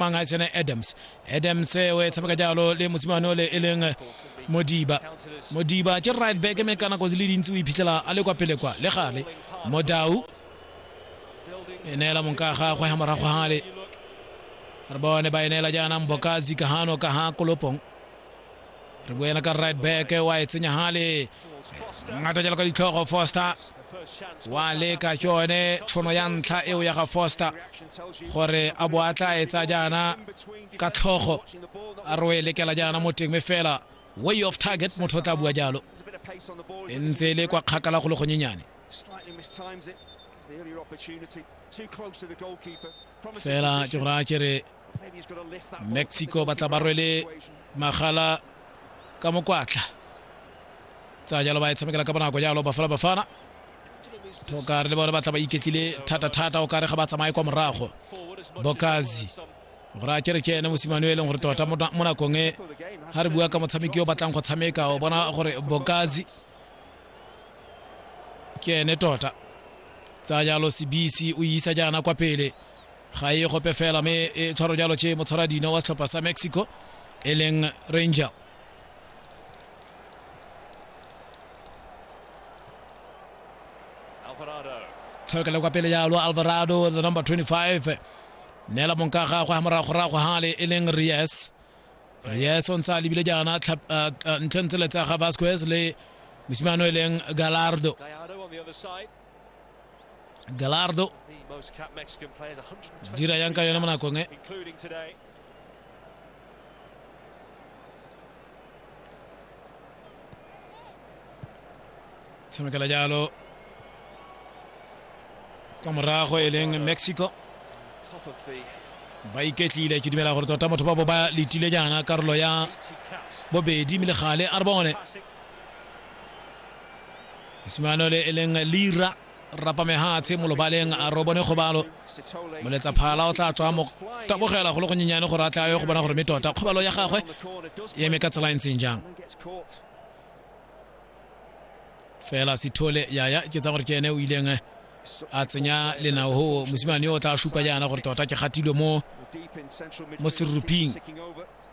mang a tsena adams adams eh, o e tshameka jalo le mosimane o le e leng eh, modiba modiba ke right back mme ka nako di le dintsi o iphitlhela a le kwa pele kwa le gale modau e neela monka gagwe ga morago gale re bone ba e neela jaanang bokazi kahano ka ga kolopong re boena ka right back wa e tsenya hale ngata jalo ka ditlhogo foster wa leka ke yone tshono ya ntlha eo ya ga foster gore a bo a tla etsa jaana ka tlhogo a re o e lekela jaana mo teng me fela way of target motho o tla bua jalo e ntse e le kwa kgakala go le gonyenyane fela ke gore a kere mexico ba tla ba rwele magala ka mokwatla tsa jalo ba e tshamekela ka bonako jalo bafala bafana tokare le bone ba tla ba iketlile thata-thata o kare ga ba tsamaye kwa morago bokazi gore a kere ke ene mosimane o e leng gore tota mo nakong e ga re bua ka motshameki o batlang go tshameka o bona gore bokazi ke ene tota tsa jalo sebisi o isa jaana kwa pele ga e gope fela mme e tshwaro jalo tše motshwara dino wa setlhopha sa mexico e leng ranger tlhokele kwa pele jalo alvarado the number 25 neela monka gagwe ga moragorago gale e leng ries ries o ntse a lebile jaana ntlhe ntse le tsa ga vasquez le mosimane o e leng galardo galardo jira yanka yona mana konge semekela jalo kwa morago e leng mexico ba iketlile ke dumela gore tota motho ba bo ba letile jaana karolo ya bobedi mme le gale a re bone mosimane ole e leng lira rapa mehatshe mo lobaleng a ro bone kgobalo moletsa phala o tla tswa mo tabogela go le go nyenyane gore a tla yo go bona gore me tota kgobalo ya gagwe e eme ka tsela e ntseng jang fela sithole ya ya ke tsa gore ke ene o ileng eh, a tsenya lenao ho mosimane yo o tla supa jaana gore tota ke gatilwe mo mo seruping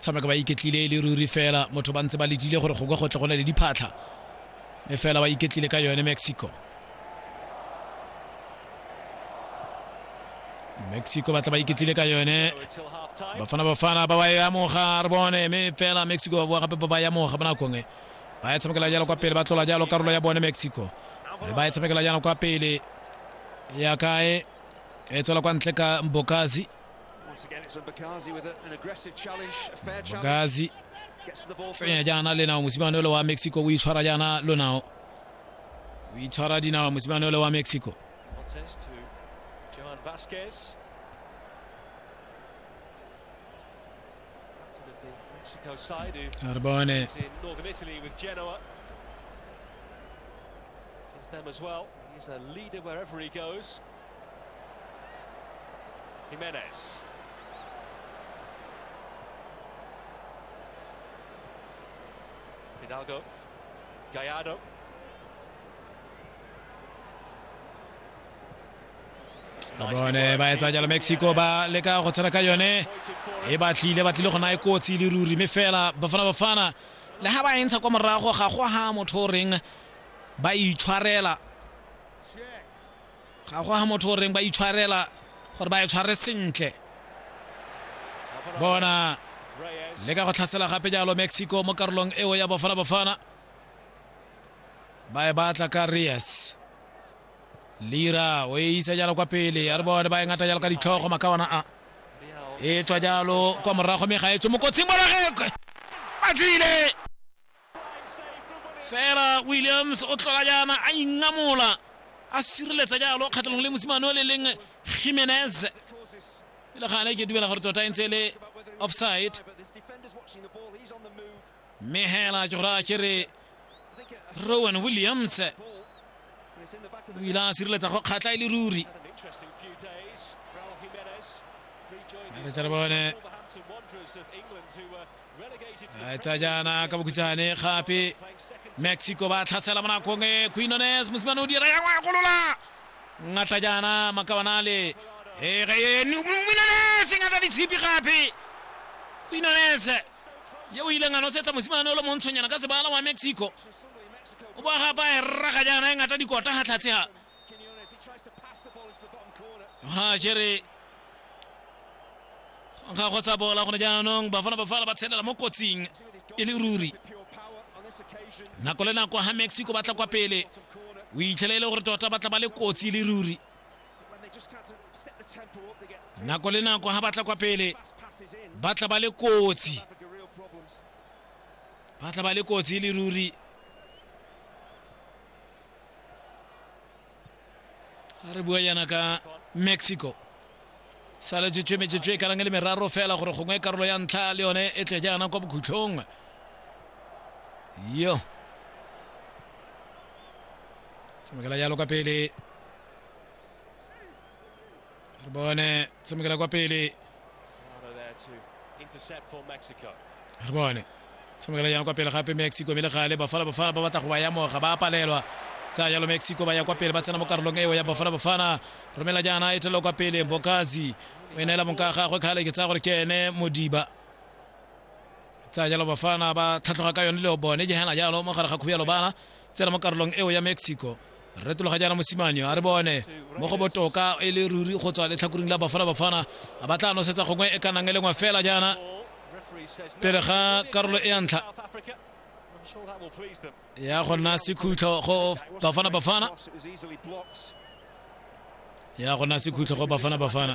tshameka ba iketlile e le ruri fela motho ba ntse ba letile gore go ka go tle go na le diphatlha e fela ba iketlile ka yone mexico mexico batla ba iketlile ka yone bafana bafana ba ba e amoga re bone mme fela mexico ba boa gape ba ba e amoga ba nakong e ba e tshamekela jalo kwa pele ba tlola jalo karolo ya bone mexico mme ba e tshamekela jalo kwa pele ya kae e tswela kwa ntle ka bokazi bakazi tsenya jaana lenao mosimane ole wa mexico o itshwara jaana lonao o itshwara dinao mosimane ole wa mexico a re bone them as well. He's a leader wherever he goes. Jimenez. Hidalgo. Gallardo. ka bone ba etsa jalo mexico ba leka go tshwana ka yone e batlile batlile go na e kotsi le ruri mme fela bafana bafana le ga ba e ntsha kwa morago ga go ga motho o reng ba itshwarela ga go ga motho o reng ba itshwarela gore ba e tshware sentle bona le ka go tlhasela gape jalo mexico mo karolong eo ya bafana bafana ba e batla ka reyes lira o e isa jalo kwa pele a re bone ba e ngata jalo ka ditlhogo makawana a e tswa jalo kwa morago mme ga e tswe mokotsing bona ge a tlile fela williams o tlola jaana a ingamola a sireletsa jalo kgatlhanong le mosimane o le leng jimenez e le gale ke dumela gore tota e ntse e le offside mme hela ke gore a ke re rowan williams o ile a sireletsa go kgatlha e le ruri re tle re bone tsa jaana ka bokhutshane gape mexico ba tlhasela mo nakong e quinones mosimane o dira ya ngwa ya golola ngata jaana makabanale quinones ngata ditshipi gape quinones ye o ileng a nosetsa mosimane o le montshonyana ka sebala wa mexico o ba gapa e rraga jaana e ngata dikota ga tlhatshega ga jere ga go sa bola gone jaanong bafana bafala ba tshelela mo kotsing e le ruri nako le nako ga mexico ba tla kwa pele o itlhela e le gore tota ba tla ba le kotsi e le ruri nako le nako ga ba tla kwa pele ba tla ba le kotsi ba tla ba le kotsi e le ruri re bua yana ka mexico sale jetswe metsetswe e kanang e le meraro fela gore gongwe karolo ya ntlha le yone e tle jaana kwa bokhutlhong yo tsamekela jalo ka pele re bone tshamekela kwa pele re bone tshamekela jang kwa pele gape mexico mme le gale bafana bafana ba batla go ba yamoga ba palelwa tsa jalo mexico ba ya kwa pele ba tsena mo karolong eo ya bafana bafana romela jaana e thelelo kwa pele bokazi o e neela monka gagwe kgale ke tsaya gore ke ene modiba tsa jalo bafana ba tlhatlhoga ka yone le bone jehana jalo mo gare ga khuya lobana tsena mo karolong eo ya mexico retologa jaana mosimanyo a re bone mo go botoka e le ruri go tswa letlhakoring la bafana bafana a ba tla nosetsa gongwe e ka nang e lengwe fela jaana pele ga karolo e ya ntlha ya go nna sekhutlho go bafana bafana ya go nna sekhutlho go bafana bafana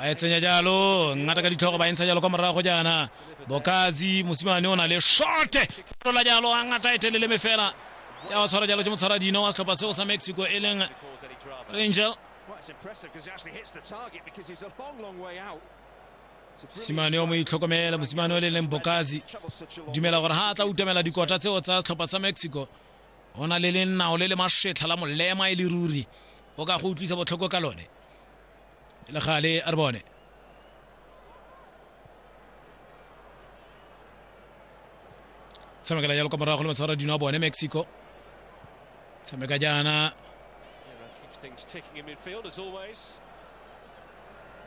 a e tsenya jalo ngata ka ditlhogo ba e ntsha jalo kwa morago jaana bokazi mosimane o na le shorte rola jalo a ngata e telele me fela ya go tshwara jalo ke motshwara dino wa setlhopha seo sa mexico e leng rangel simane o mo itlhokomela mosimane o le leng bokazi dumela gore ha a tla utamela dikota tseo tsa setlhopha sa mexico o na le lennao le le masetlha la molema e le ruri o ka go utlwisa botlhoko ka lone e le gale a re bone tshamekela jalo kwa morago le matshwara dino a bone mexico tshameka jaana Things ticking in midfield as always.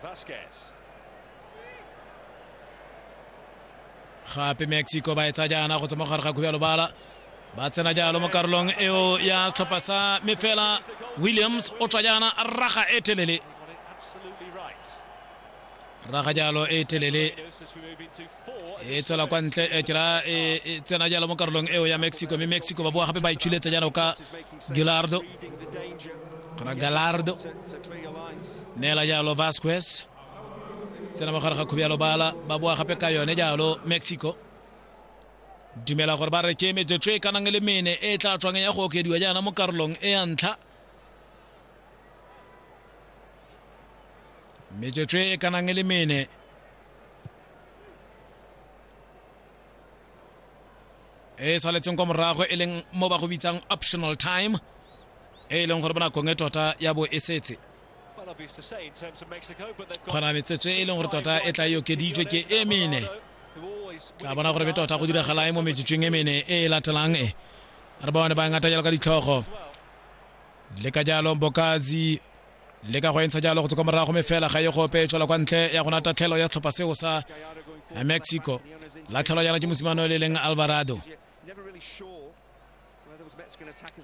Vasquez. gape mexico ba e tsa jaana go tsama gare ga khubjalo bala ba tsena jalo mo karolong eo ya setlhopha sa me fela williams o tswa jaana raga e telele raga jalo e telele e tswela kwa ntle e kera e, e tsena jalo mo karolong eo ya mexico mme mexico ba boa gape ba itshuletsa jalo ka gilardo gona galardo neela jalo vasquez tsena mogare ga khubi ya lobala ba boa gape ka yone jalo mexico dumela gore ba reke metsotso e kanang le mene e tla tswang ya go okediwa jaana mo karolong e ya ntlha metsotso e kanang le mene e saletseng kwa morago e leng mo ba go bitsang optional time e leng gore bonakong e tota ya bo e setse kgona metsetswe e leng gore tota e tla e okeditswe ke e mene tla bona gore be tota go diragala e mo metsetsweng e mene e e latelang e re bone ba ngata jalo ka ditlhogo le ka jalo bokazi le ka go entsha jalo go tswa morago me fela ga ye go ope tshola kwa ntle ya gona tatlhelo ya tlhopha seo sa mexico latlhelo jana ke mosimane le leng alvarado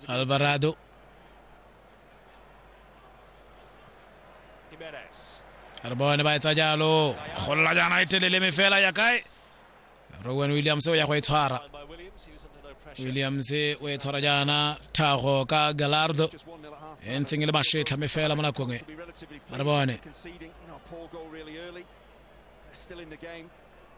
alvarado Jimenez. re bone ba etsa jalo golola jaana e telele me fela ya kae rowan williams o ya go e tshwara Line by Williams. He was under no pressure. williams o e tshwara jaana thago ka galardo Just 1 0 at half e ntseng e le mašetlha me fela mo nakong e to be relatively Re bone. pleased conceding you know, a poor goal really early. They're still in the game.